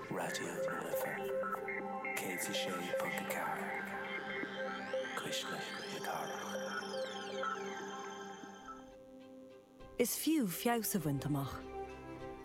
Raidió na Life 106.4, cuisle na cathrach. Is fiú feabhas a bhaint amach.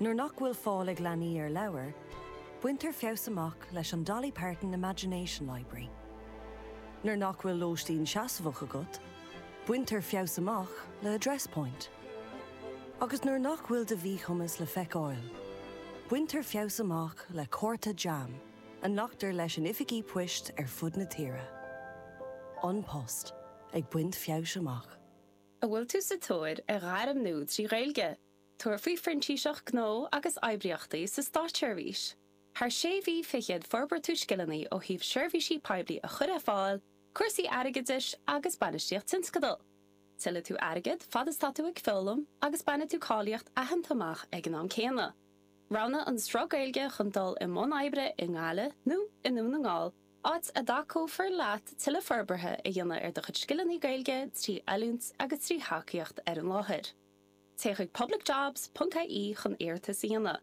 Nuair nach bhfuil fáil ag leanaí ar leabhair, baintear feabhas amach leis an Dolly Parton Imagination Library. Nuair nach bhfuil lóistín seasmhach agat, baintear feabhas amach le Address Point. Agus nuair nach bhfuil do mhíchumas le feiceáil, baintear feabhas amach le cárta JAM a nglactar leis in oifigí poist ar fud na tíre. An Post ag baint feabhais amach. An bhfuil tú sa tóir ar ghairm nua trí Ghaeilge? Tabhair faoi Phrintíseacht Gnó agus Oibríochtaí sa Státseirbhís. Thar sé mhí fichead forbróidh tú scileanna ó thaobh seirbhísí poiblí a chur ar fáil, cúrsaí airgeadais agus bainistíocht tionscadal. Tuillfidh tú airgead fad is tá tú ag foghlaim agus bainfidh tú cáilíocht aitheanta amach ag an am céanna. Roghnaigh an sruth Gaeilge chun dul i mbun oibre i nGaillimh nó i nDún na nGall, áit a dtacófar leat tuilleadh forbartha a dhéanamh ar do chuid scileanna Gaeilge trí oiliúint agus trí thacaíocht ar an láthair. Téigh chuig publicjobs.ie chun iarratas a dhéanamh.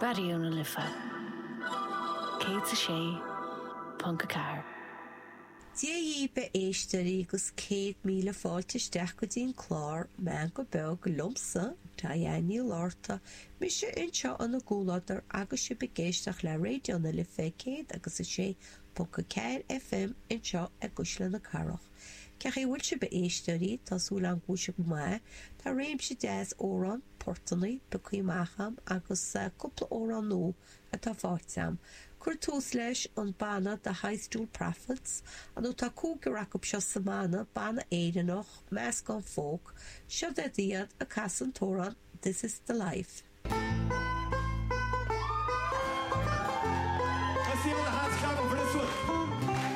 Raidió na Life 106.4. Dia daoibh, a éisteoirí, agus céad míle fáilte isteach go dtí an clár Meán go Beag liomsa, Diane Ní Fhlatharta, mise anseo in bhur gcomhluadar agus sibh ag éisteach le Raidió na Life 106.4 FM anseo i gCuisle na Cathrach. Cén chaoi a bhfuil sibh, a éisteoirí, tá súil agam go bhfuil sibh go maith, tá réimse deas amhrán, portannaí pioctha amach a'm agus cúpla amhrán nua atá faighte a'm. Cur tús leis an banna The High Stool Prophets, ó tá cúigear acub seo sa mbanna, banna Éireannach, meascán folk, seod iad iad ag casadh an t-amhrán This is the Life.